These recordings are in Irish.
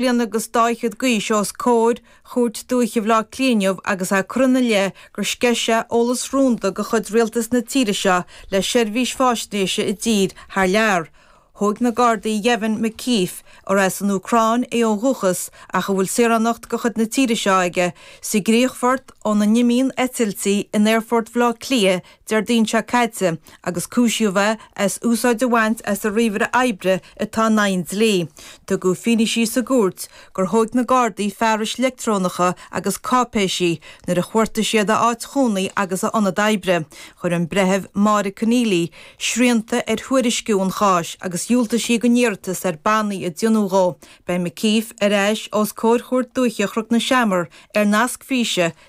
bliana agus dá fhichead d'aois os comhair Chúirt Dúiche Bhaile Átha Cliath inniu agus é curtha ina leith gur sceith sé eolas rúnda de chuid Rialtas na tíre seo le seirbhís faisnéise i dtír thar lear. Thóg na Gardaí Yevhen McKeeffe, ar as an Úcráin é ó dhúchas ach a bhfuil saoránacht de chuid na tíre seo aige, sa gcríochfort óna n-imíonn eitiltí in Aerfort Bhaile Átha Cliath Déardaoin seo caite agus cúisíodh é as úsáid a bhaint as a ríomhaire oibre atá in aghaidh an dlí. Tugadh fianaise sa gcúirt gur thóig na Gardaí fearais leictreonacha agus cáipéisí nuair a chuartaigh siad a áit chónaí agus a ionad oibre. Chuir an Breitheamh Máire Conneely srianta ar thuairisciú an cháis agus dhiúltaigh sí don iarratas ar bannaí a dheonú dhó. Beidh McKeeffe ar ais os comhair Chúirt Dúiche Chnoc na Seamar ar nasc físe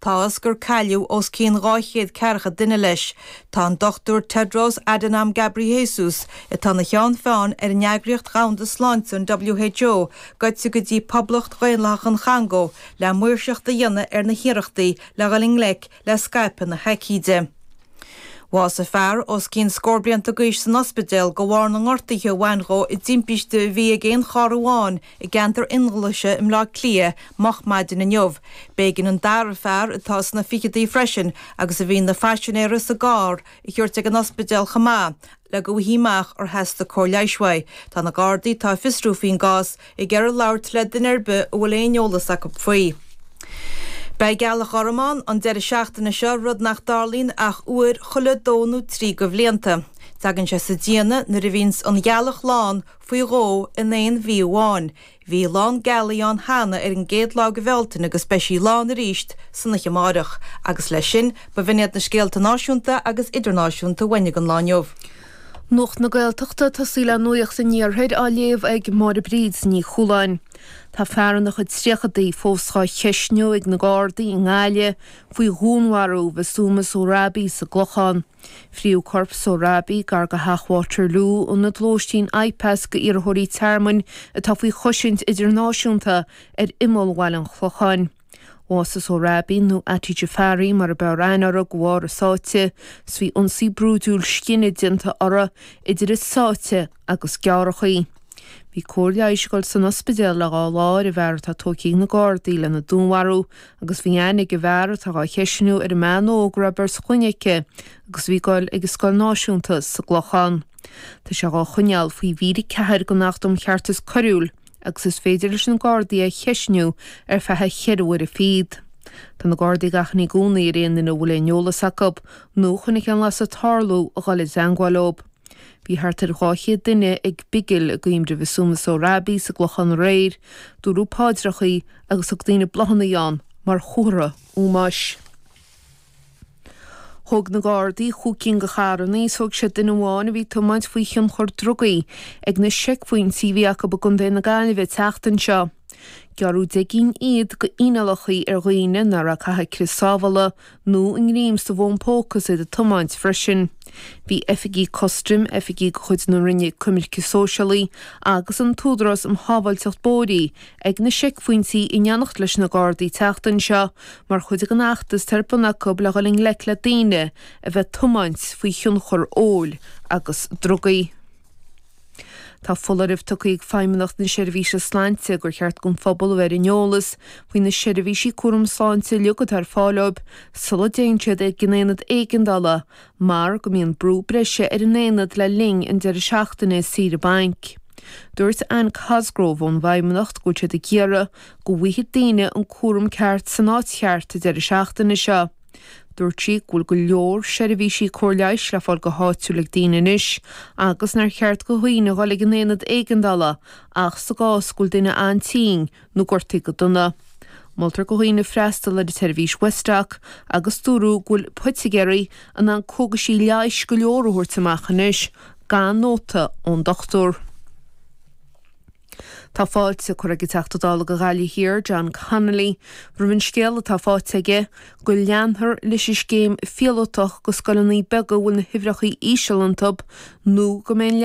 Tá a fhios gur cailleadh os cionn dhá chéad ceathracha duine leis. Tá an Dr. Tedros Adhanom Ghebreyesus, atá ina cheann feadhain ar an Eagraíocht Dhomhanda Sláinte, an WHO, goite go dtí Poblacht Dhaonlathach an Chongó le maoirseacht a dhéanamh ar na hiarrachtaí le dhul i ngleic le scaipeadh na haicíde. Bhásaigh fear os cionn scór blianta d'aois san ospidéal de bharr na ngortuithe a bhain dhó i dtimpiste a bhí ag aon charr amháin I gceantar Fhionnghlaise i mBleá Cliath moch maidin inniu, b'éigean an dara fear, atá sna ficheadaí freisin agus a bhí ina phaisinéara sa gcarr, a thabhairt ag an ospidéal chomh maith le go bhfaighfí amach ar theastaigh cóir leighis uaidh. Tá na Gardaí, atá ag fiosrú faoin gcás, ag iarraidh labhairt le duine ar bith a bhfuil aon eolas acu faoi. Beidh gealach ghorm ann an deireadh seachtaine seo, rud nach dtarlaíonn ach uair chuile dó nó trí de bhlianta. Teagann sé sa déanamh nuair a bhíonns an ghealach lán, faoi dhó in aon mhí amháin. Bhí lán gealaí ann cheana ar an gcéad lá de Bhealtaine agus beidh sí lán arís san oiche amáireach. Agus leis sin, ba bh'in iad na scéalta náisiúnta agus idirnáisiúnta a tháinig an lá inniu. Nuacht na Gaeltachta ag tosú le Nuacht an Iarthair á léamh ag Máire Bríd Ní Chualáin. Tá fear ina chuid tríochadaí fós á cheisniú ag na Gardaí i nGaillimh faoi dhúnmharú Mhasuma Sohrabi sa gClochán. Frítheadh corp Sohrabi gar do Theach Waterloo, ionad lóistín IPAS d'iarrthóirí tearmainn atá faoi chosaint idirnáisiúnta, ar imeall bhaile an Chlocháin. Bhásaigh Sohrabi, nó Ati Jafari mar ab fhearr aithne uirthi, de bharr a sáite. Is bhí ionsaí brúidiúil scine déanta uirthi idir a sáite agus gearrachaí. Bhí cóir leighis ag dul san ospidéal le dhá lá ar an bhfear atá tógtha ag na Gardaí lena dúnmharú agus bhí aithne ag an bhfear atá dhá cheisniú ar an mbean óg a raibh beirt chlainne aici agus bhí ag dul ag an scoil náisiúnta sa gClochán. Tá sé dhá choinneáil faoi mhír 4 den Acht um Cheartas Coiriúil agus is féidir leis na Gardaí é a cheisniú ar feadh cheithre huaire fichead. Tá na Gardaí ag achainí i gcónaí ar aon duine a bhfuil aon eolas acu nó a chonaic aon bhlas ag tarlú a dhul i dteangmháil leob. Bhí thart ar 200 duine ag bigil i gcuimhne Shéamuis Uí Robbaigh sa gClochán aréir. Dúradh páidreachaí agus thug daoine bláthannaí ann mar chomhartha ómóis. Thóg na Gardaí chúig cinn de charrannaí is thóg siad duine amháin a bhí ag tiomáint faoi thionchar drugaí ag na seicphointí a bhí acu i gContae na Gaillimhe an tseachtain seo. Gearradh deich gcinn fhichead go fhíneálachaí ar dhaoine nach raibh ag caitheamh crios sábhála nó i ngreim sa bhfón póca is iad ag tiomáint freisin. Bhí oifigí custaim, oifigí de chuid na Roinne Coimirce Sóisialaí agus an tÚdarás um Shábháilteacht Bóithre ag na seicphointí in éineacht leis na Gardaí tseachtain seo mar chuid den fheachtas atá ar bun acu le dhul i ngleic le daoine a bheith ag tiomáint faoi thionchar óil agus drugaí. Tá foláireamh tugtha ag Feidhmeannacht na Seirbhíse Sláinte gur cheart don phobal a bheith ar an eolas faoi na seirbhísí cúraim sláinte uilig atá ar fáil dóibh sula dtéann siad ag an aonad éigeandála mar go mbíonn brú breise ar an aonad le linn an deireadh seachtaine saoire bainc. Dúirt Anne Cosgrove ón bhFeidhmeannacht go bhfuil siad ag iarraidh go bhfaigheadh daoine an cúram ceart san áit cheart an deireadh seachtaine seo. Dúirt sí go bhfuil go leor seirbhísí cóir leighis le fáil go háitiúil ag daoine anois agus nár cheart do dhaoine a dhul ag an aonad éigeandála ach sa gcás go bhfuil duine an-tinn nó gortaithe go dona. Moltar do dhaoine freastal ar an tseirbhís Westdoc agus dúradh go bhfuil poitigéirí in ann cógaisí leighis go leor a thabhairt amach anois gan nóta ón dochtúir. Tá fáilte curtha ag an Teachta Dála do Ghaillimh Thiar, John Connolly, roimh an scéal atá faighte aige go leanfar leis an scéim phíolótach go scoileanna beaga a bhfuil na huimhreacha íseal iontub nó go mbeidh an